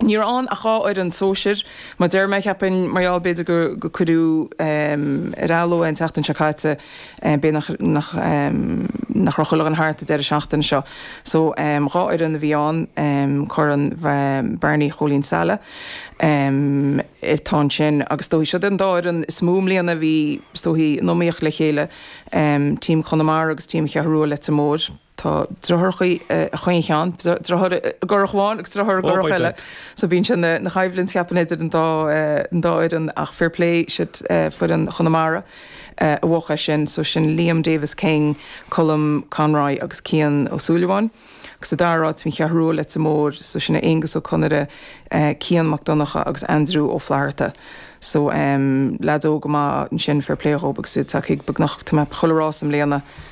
Ní raibh ann ach dhá fhoireann sóisir. Mar a deir mé, cheapfainn, mar gheall b'fhéidir gur cuireadh ar athló é an tseachtain seo caite, b'fhéidir nach raibh chuile dhuine thart an deireadh seachtaine seo. So, dhá fhoireann a bhí ann, Corn Barney Chóilín Saile atá ansin agus is dóichí siad an dá fhoireann is mó i mbliana a bhí is dóichí in iomaíocht le chéile, Team Chonamara agus Team Cheathrú Rua Leitir Móir. Tá driotháir acu i chaon cheann, driotháir i gcurach amháin agus driotháir i gcurach eile, so bíonn sin ina choimhlint cheapfainn idir an dá an dá fhoireann ach fair play siad foireann Chonamara a bhuadh é sin. So sin Liam Davis King, Colm Conroy agus Cian Ó Súilleabháin. Agus sa dara áit bhí An Cheathrú Rua Leitir Móir so sin é Aonghus Ó Conaire, Cian Mac Donncha agus Aindriú Ó Flatharta. So lads óga maith ansin fair play dhóibh agus iad tagthaí go beagnach chuile rás i mbliana.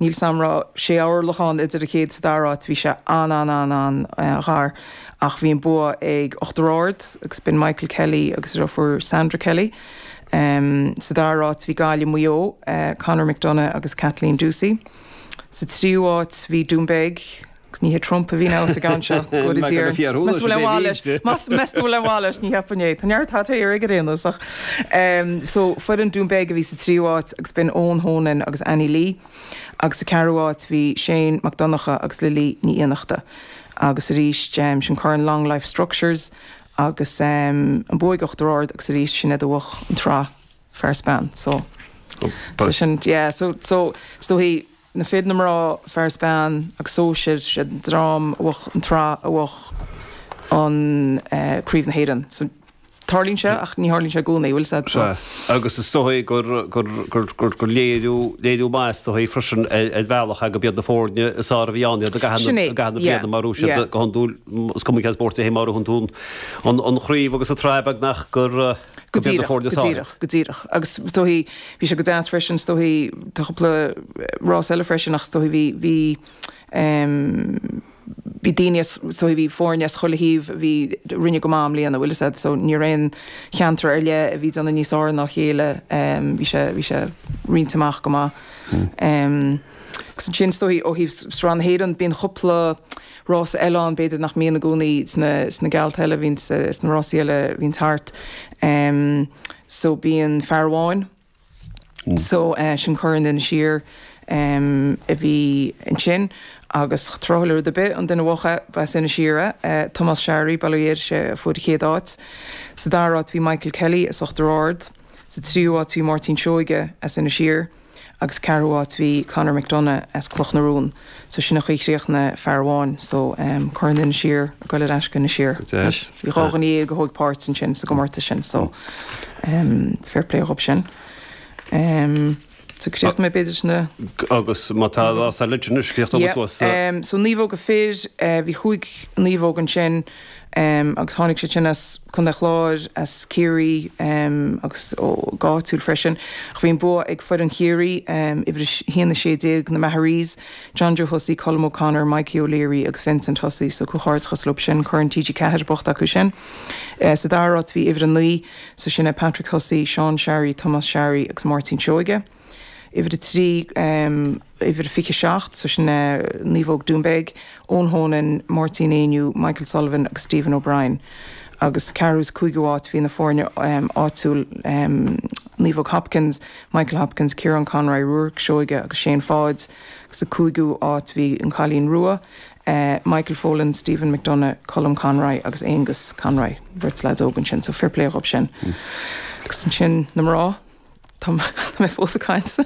Níl a fhios a'm an raibh sé orlach ann idir an chéad is an dara áit. Bhí sé an-an-an-an-ghar ach bhí an bua ag Uachtar Ard agus b'in Michael Kelly agus a dheirfiúr Sandra Kelly. Sa dara áit bhí Gaillimh, Maigh Eo, Conor McDonough agus Kathleen Ducey. Sa tríú áit bhí Doonbeg. Ní hé Trump a bhí ann sa gceann seo. Good is here. Meas tú an bhfuil aon mhaith leis. Meas go bhfuil an mhaith leis, ní cheapaim é. Tá neart hot air aige ar aon nós ach. So foireann Doonbeg a bhí sa tríú háit agus b'in Eoin Honan agus Annie Lee. Agus sa ceathrú háit bhí Shane Mac Donncha agus Lily Ní Fhiannachta. Agus arís sin Corn Long Life Structures agus an bua ag Uachtar Ard agus arís sin iad a bhuach an tsraith. Fear is bean. So so sin yeah so so is dóichí na fir na mná fear is bean agus sóisir sé an dream a bhuach an tsraith a bhuach an eh, Craobh na hÉireann. So tarlaíonn sé ach ní tharlaíonn sé i gcónaí, bhfuil a fhios a'd? So, Sea, agus is dóichí gur, gur, gur, gur, gur léiriú, léiriú maith is dóichí freisin ar, ar bhealach go mb'iad na foirne is fhearr a bhí ann iad i gcaitheamh, Sin é, i gcaitheamh na yeah, bliana mar úis iad yeah. go hiondúil, m- is cuma cén spórt é, mar a thugann tú an, an, an chraobh agus an tsraith beagnach gur, eh, Go dtí do chomhairle Go sáile. díreach, go díreach. Agus is dóichí bhí sé go deas freisin, is dóichí tá cúpla rás eile freisin ach is dóichí bhí, bhí bhí daoine as, is dóichí bhí foirne as chuile thaobh a bhí, a rinne go maith i mbliana, bhfuil a fhios a'd, so ní raibh aon cheantar ar leith a bhí ag déanamh níos fhearr ná a chéile, bhí sé, bhí sé roinnte amach go maith. Agus ansin is dóichí ó thaobh sraith na hÉireann bíonn cúpla, Rás eile ann b'fhéidir nach mbíonn i gcónaí sna geallta eile, a bhíonn sna rásaí eile a bhíonns thart so bíonn fear amháin so sin Corn Inis Oírr a bhí ansin agus tráthúil le rud ar bith an duine a bhuach é b'as Inis Oírr é. Tomás Sharry, bail ó Dhia air, is é a fuair an chéad áit. Sa dara áit bhí Michael Kelly as Uachtar Ard. Sa tríú áit bhí Máirtín Seoige as Inis Oírr. agus ceathrú áit bhí Conor McDonagh as Cloch na Rún so sin an chaoi a chríochnaigh fear amháin so Corn Inis Oírr ag dul ar ais go Inis Oírr anois bhí dháréag duine a thóig páirt ansin sa gcomórtas sin so fair play dhób sin. So críochnóidh mé b'fhéidir sin na. Agus má tá lá sa leid sin scríofa so naomhóga fir bhí cúig naomhóg ansin em, agus tháinig siad sin as Contae Chláir, as Ciarraí, em, agus ó, go áitiúil freisin. Ach bhí an bua ag foireann Chiarraí, em, uimhir a, haon a sé déag, na Maharees, John Joe Hussey, Colm O'Connor, Mikey O'Leary agus Vincent Hussey, so comhghairdeachas leob sin Corn TG4 buaite acu sin. Eh, sa dara áit bhí uimhir a naoi, so sin é Patrick Hussey, Seán Sharry, Tomás Sharry agus Máirtín Seoige. uimhir a trí, uimhir a fiche a seacht, so sin naomhóg Doonbeg, Eoin Honan, Máirtín Éinniú, Michael Sullivan agus Stephen O'Brien agus ceathrú sa cúigiú áit bhí na foirne áitiúil Naomhóg Hopkins, Michael Hopkins, Kieran Conroy, Ruairí Seoige agus Seán Pháid agus sa cúigiú áit bhí an Cailín Rua. Michael Folan, Stephen McDonagh, Colm Conroy agus Aengus Conroy. Beirt leaid óg ansin so fair play dhób sin. Agus ansin na mná. Tá mé fós ag caint.